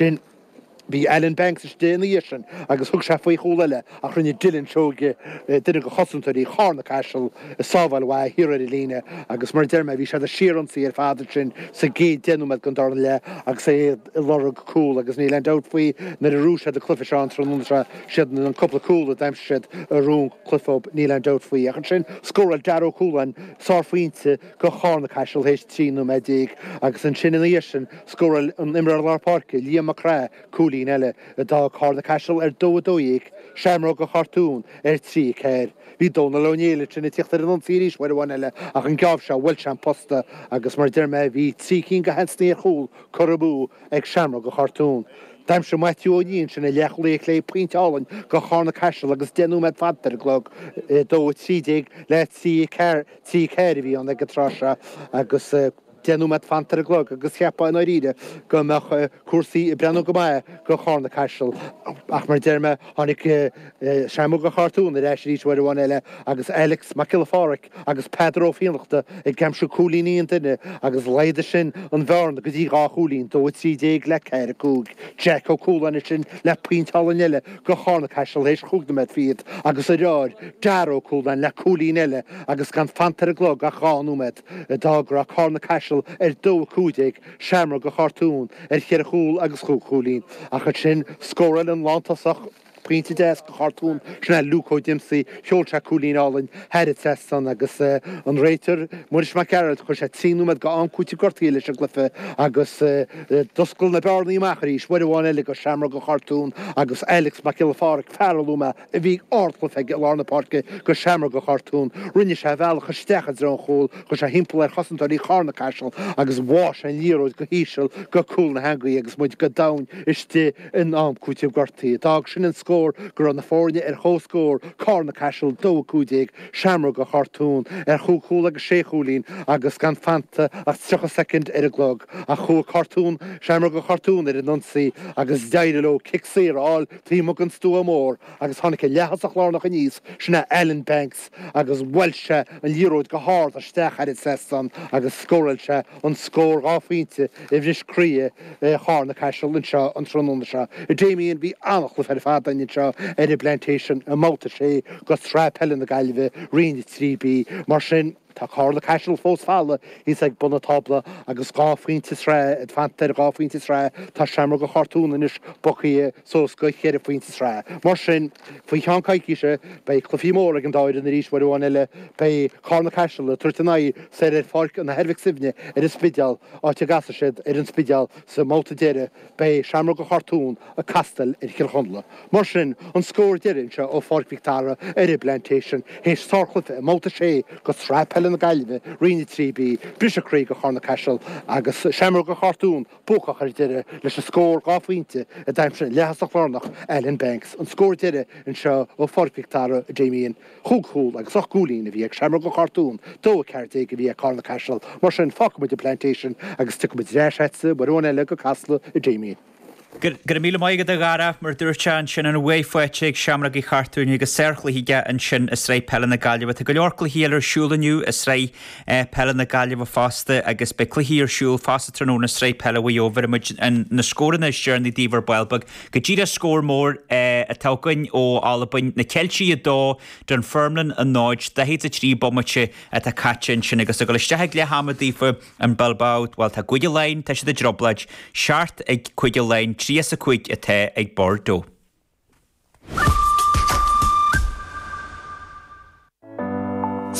sin. Bhí Alan Banks istigh ina dhiaidh sin agus thug sé faoi chúl eile ach rinne Dylan Seoige duine go chosantóirí Charna Caiseal ag sábháil mhaith thiar ar an líne agus mar a deir mé, bhí siad ag síor-ionsaí ar fad ansin sa gcéad deich nóiméad den dara leath agus é ag lorg cúl agus níl aon dabht faoi nuair a ghnóthaigh siad an cluiche seo an tráthnóna seo, siad an cúpla cúl a d'aimsigh siad a ghnóthaigh an cluiche dóibh níl aon dabht faoi ach ansin scóráil Darragh Ó Cualáin sárphointe go Charna Caiseal théis 13 nóiméad agus ansin ina dhiaidh sin scóráil an t-imreoir lár páirce Liam Mac Craith cúilín eile a d'fhág Carna Caiseal ar dó 12, Seamróga Chartún ar 3, 4. Bhí Dónal Ó Néill ansin ag tíocht ar an ionsaí arís uair amháin eile ach an geábh seo bhuail sé an posta agus mar a deir mé bhí trí cinn go sheansanna ar chúl curtha amú ag Seamróga Chartún. D'aimsigh Maitiú Ó Nia ansin an leathchúlaí clé pointe álainn go Charna Caiseal agus deich nóiméad fanta ar an gclog, 2, 13 le 3, 4. 3, 4 a bhí ann ag an tráth seo agus deich nóiméad fanta ar an gclog agus cheapfá i ndáiríre go mbeadh cúrsaí ag breathnú go maith go Charna Caiseal ach mar a deir mé tháinig Seamróga Chartún ar ais arís uair amháin eile agus Alex Mac Giolla Pháraic agus Peadar Ó Fiannachta ag aimsiú cúilíní an duine agus laghdaigh sin an bhearna go dtí dhá chúilín, 2 13 le 4 5. Jeaic Ó Cualáin ansin le pointe álainn eile. go Charna-Caiseal théis chúig nóiméad fichead agus a dheartháir Darragh Ó Cualáin le cúilín eile agus gan fanta ar an gclog ach dhá nóiméad, d'fhág go raibh Carna-Caiseal ar dó, 15, Seamróga Chartún ar cheithre chúl agus chúig chúilín, ach ansin scóráil an lántosach pointe deas go Chartún sin é Luke Ó Díomasaigh. Sheol sé cúilín álainn thar an trasnán agus an réiteoir Muiris Mac Gearailt, chuir sé trí nóiméad go am cúitimh gortaithe leis an gcluiche agus d'oscail na bearnaí amach arís, uair amháin eile go Seamróga Chartún agus Alex Mac Giolla Pháraic, fear a luaigh mé a bhí ardchluiche aige i lár na páirce go Seamróga Chartún, rinne sé a bhealach isteach i dtreo an chúil, chuir sé thimpeall ar chosantóirí Charna Caiseal agus bháigh sé an liathróid go híseal go cúl na heangaí agus muid go domhain istigh in am cúitimh gortaithe. D'fhág sin an scór go raibh na foirne ar comhscór, Carna Caiseal, dó 15, Seamróga Chartún, ar chúig chúl agus sé chúilín agus gan fanta ach 30 soicind ar an gclog ach chuaigh Cartún, Seamróga Chartún ar an ionsaí agus d'éirigh leo cic saor a fháil taobh amuigh den stua mór agus tháinig an leaththosach lárnach aníos, sin é Alan Banks agus bhuail sé an liathróid go hard isteach thar an trasnán agus scóráil sé. an scór dhá phointe a bhris croí Charna-Caiseal anseo an tráthnóna seo. Damien, Bhí an-chluiche ar fad againn anseo ar an bPlantation i mbabhta a sé de Shraith Peile na Gaillimhe, Roinn 3B. Mar sin, tá Carna-Caiseal fós fada thíos ag bun an tábla agus dhá phointe sraithe fanta ar dhá phointe sraithe. Tá Seamróga Chartún anois bogtha. suas go ceithre phointe sa tsraith. Mar sin, faoi cheann coicíse, beidh cluichí móra ag an dá fhoireann arís uair amháin eile. Beidh Carna Caiseal ag tabhairt a n-aghaidh soir ar Pháirc an Athar Mhic Suibhne ar an Spidéal, áit a gcasfaidh siad ar an Spidéal sa mbabhta deiridh. Beidh Seamróga Chartúin ag castail ar Chill Chonla. Mar sin, an scór deiridh anseo ó Pháirc Mhic Dara ar an bPlantation théis sárchluiche i mbabhta a sé de Shraith Peile na Gaillimhe, Roinn 3B, briseadh croí do Charna-Caiseal agus Seamróga Chartúin. buacach ar deireadh leis an scór dhá phointe a d'aimsigh an leaththosach lárnach Alan Banks, an scór deiridh anseo ó Pháirc Mhic Dara, Damien. Chúig chúl agus ocht gcúilín a bhí ag Seamróga Chartúin, 2-14 a bhí ag Carna-Caiseal, mar sin fágfaidh muid an Plantation agus tiocfaidh muid ar ais agatsa uair amháin eile go Casla, a Damien. Go raibh míle maith agat, a Dhara, mar dúirt tú ansin an bhuaidh faighte ag Seamrógaí Chartúin agus sárchluiche aige ansin i Sraith Peile na Gaillimhe. Tá go leor cluichí eile ar siúl inniu i Sraith Peile na Gaillimhe fosta agus beidh cluichí ar siúl fosta tráthnóna Sraith Peile Mhaigh Eo. Bhéarfaidh muid na scóranna is deireanaí daoibh ar ball beag go díreach Scór mór atá againn ó Albain, na Ceiltigh 2, Dunfermline 0, 43 bomaite atá caite ansin agus ag dul isteach ag leath ama daofa in Bilbao, bhuel tá Cúige Laighean, tá siad i dtrioblóid, seacht ag Cúige Laighean, tríocha is a cúig atá ag Bordeaux.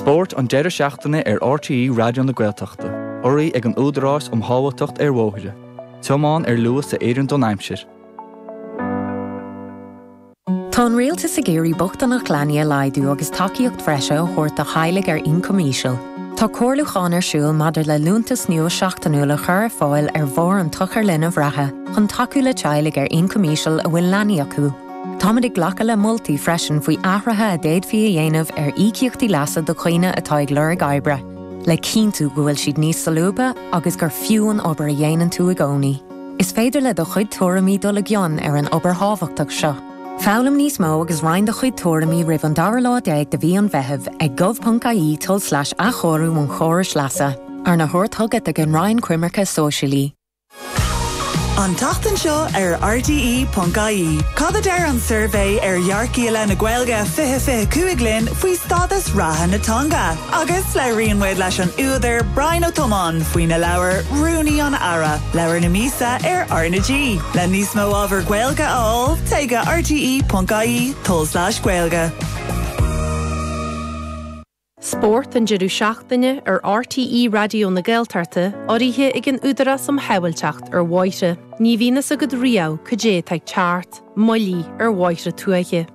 Spórt an deireadh seachtaine ar RTÉ Raidió na Gaeltachta. Urraithe ag an Údarás um Shábháilteacht ar Bhóithre. Tiomáin ar luas a oireann don aimsir. Tá an Rialtas ag iarraidh bochtaineacht leanaí a laghdú agus tacaíocht bhreise a thabhairt do theaghlaigh ar ioncam íseal. Tá comhairliúchán ar siúl maidir le liúntas nua seachtainiúil a chur ar fáil ar bharr an tsochair linbh reatha chun tacú le teaghlaigh ar ioncam íseal a bhfuil leanaí acu. Táimid ag glacadh le moltaí freisin faoi athruithe a d'fhéadfaí a dhéanamh ar íocaíochtaí leasa do dhaoine atá ag lorg oibre, le cinntiú go bhfuil siad níos solúbtha agus gur fiú an obair a dhéanann tú i gcónaí. Is féidir le do chuid tuairimí dul i gcion ar an obair thábhachtach seo. Foghlaim níos mó agus roinn do chuid tuairimí roimh an dara lá déag de mhí an Mheithimh ag gov.ie tulslais athchóiriú an chórais leasa, arna thabhairt chugat ag an Roinn Coimirce Sóisialaí. An tseachtain seo ar RTÉ.ie, cad a deir an suirbhé ar dhearcadh i leith na Gaeilge 2025 linn faoi stádas reatha na teanga? Agus labhraíonn muid leis an údar Brian Ó Tiomáin faoina leabhar Rúnaí an Aire, Leabhar na Míosa ar RnaG. Le níos mó ábhar Gaeilge a fháil, téigh go rte.ie tulslais Gaeilge. Spórt an deireadh seachtaine ar RTÉ Raidió na Gaeltachta urraithe ag an Údarás um Shábháilteacht ar Bhóithre. Ní bhíonn fhios agat riamh cad é atá ag teacht, moilligh ar bhóithre tuaithe.